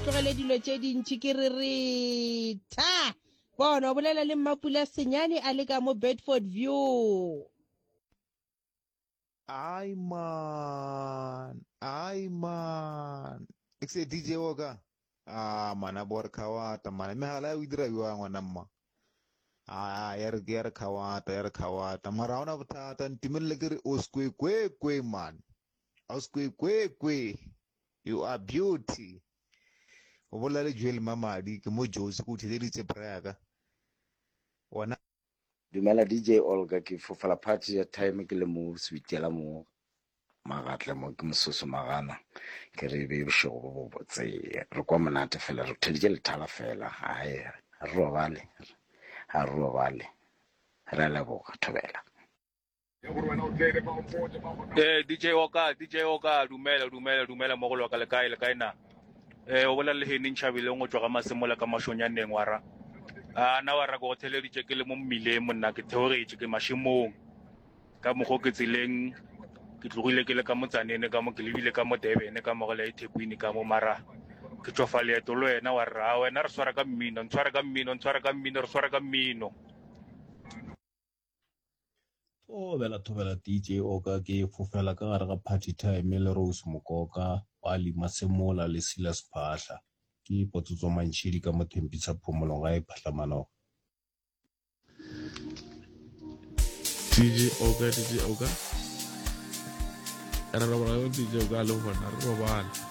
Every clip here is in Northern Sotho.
tlogele dilo tše dintši ke re re tha bona o bolela le mmapula senyane a le ka mo bedford view ai man ai man e se dj wo ka a ah, mana bo re khawata mana megala ya o dira bjang ngwana mma a ah, ya re ya re khawata ya re khawata mara ha ona bothata ntumelele ke re o sekwe kwe kwe man o sekwe kwe kwe You are beauty. O bolela le Joel Mamadi, ke mo Jozi, ke o theleditse bra ya ka. Wena. Dumela DJ Olga, ke fofela party ya time ke le mo switela mo magatle mo ke mososo magana ke re be bošego bo bobotse re kwa monate fela re theleditše lethala fela gae re robale ga re robale re leboga thobela ee dj oka dj oka dumela dumela dumela mo go loka le kae le kae na ee o bolela le hening tšhabileng go tswa ga masemola ka mašonyaneng wa ra a na wa ra ko go theleditše ke le mo mmileng monna ke theogetše ke mašemong ka mokgo ke tseleng ke tlogile ke le ka motsanene ka mo ke lebile ka mo debene ka mogela e thekwini ka mo mara ke tswafa leeto le wena wa rra wena re swara ka mmino ntshware ka mmino ntshware ka mmino re swara ka mmino o bela thobela dj oka ke fofela ka gare ga party time le rose mokoka wa lima semola le sila sephahla ke potsotso mantšhedi ka mothempisa phomolong ga e phatlamanoga dj oka dj oka re robala yo dj oka le gona re robala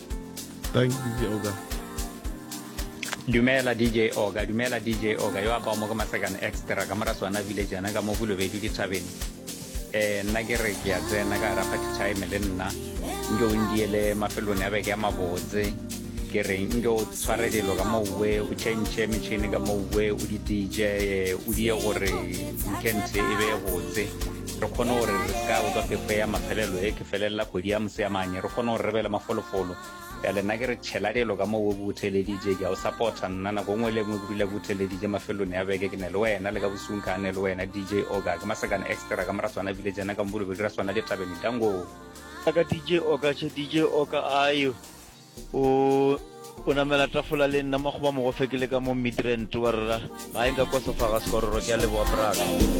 Thank you, DJ Oga. dumela dj oga dumela dj oga yo a bao mo ke masekane extra ka mora swana village yana ka mo bolobedi ke thabeng um nna ke re ke ya tsena ka gara party time le nna nke o ndiele mafelone a beke ya mabotse ke re nke o tshware dilo ka mouwe o changee metšhini ka mouwe o di dije o die gore weekend e be botse re kgone gore re se ka utlwa phefo ya mafelelo e ke felelela kgwedi ya moseamanye re kgone gore re be le mafolofolo ya lena ke re tšhela dilo ka moo o butheleditše ke a o supporta nna nako nngwe le nngwe ke dula butheleditše mafelong ya beke ke ne le wena le ka bosung ka ne le wena dj oka ke masakana extra ka mora tswana village yana ka mbolebe dira tswana le tabeng dango ka dj oka che dj oka ayo o o namela tafola le nna makgoba mogofe ke le ka mo midrant wa rra ga e nka kosofaga sekororo ke a leboa braga